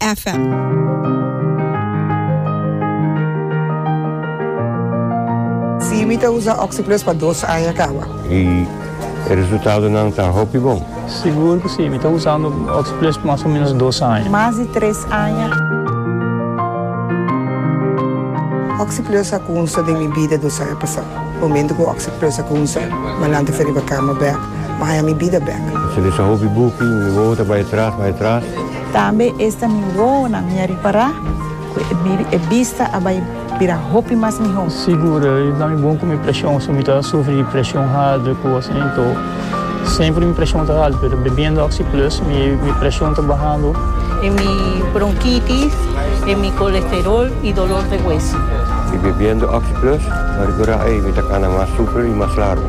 FM. Sí, mi ta usa Oxyplus pa dos aña kawa. I e resultadonan ta hopi bon. Sigur ku sí, mi ta usando Oxyplus pa mas o ménos dos aña. Mas di tres aña. Oxyplus a kunsa den mi bida dos aña pasá. Momentu ku Oxyplus a kunsa, Malanta fe riba kama bèk, maña mi bida bèk. Mi sali sa hopi buki, mi wowo ta bai atras, bai atras. Tambe esta mi wowonan mi a ripará ku e bista a bai bira hopi mas mihó. Sigur, i ta mi bon ku mi preshon, si mi ta sufri di preshon harder ku asin to. Semper mi preshon ta haltu, pero bebiendo Oxi Plus mi preshon ta bahando. E mi bronkitis, e mi kolesterol i dolor de hueso. I bebiendo Oxi Plus mi a rekurá, ei mi ta kana mas super i mas largu.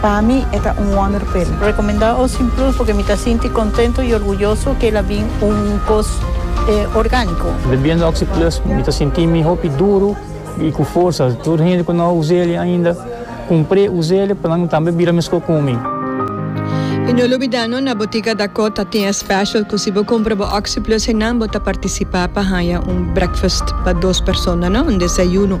Pa mi e ta un wonder pel. Recomenda Ocean Plus porque mi ta sinti contento y orguyoso que el a bin un cos organico. Bebiendo Oxy Plus mi ta sinti mi hopi duro y cu forsa. Tur hende cu no a usa eli ainda cumpre usa eli pa nan tambe bira mesco cu mi. Y no lubida no na Botica Dacot ta tin e special cu si bo cumpra bo Oxy Plus henan bo ta participa pa haya un breakfast pa dos persona no, un desayuno.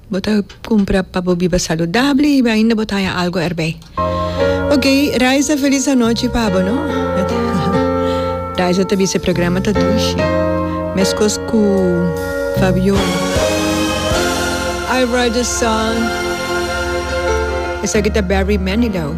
Bo ta cumpra pa bo biba saludabel y ainda bo ta haña algo erbij. Ok, Raiza feliz anochi pa bo no. Raiza ta bisa e programa ta dushi. Mescos cu Fabiola. I write the song. Esaki ta Barry Manilow.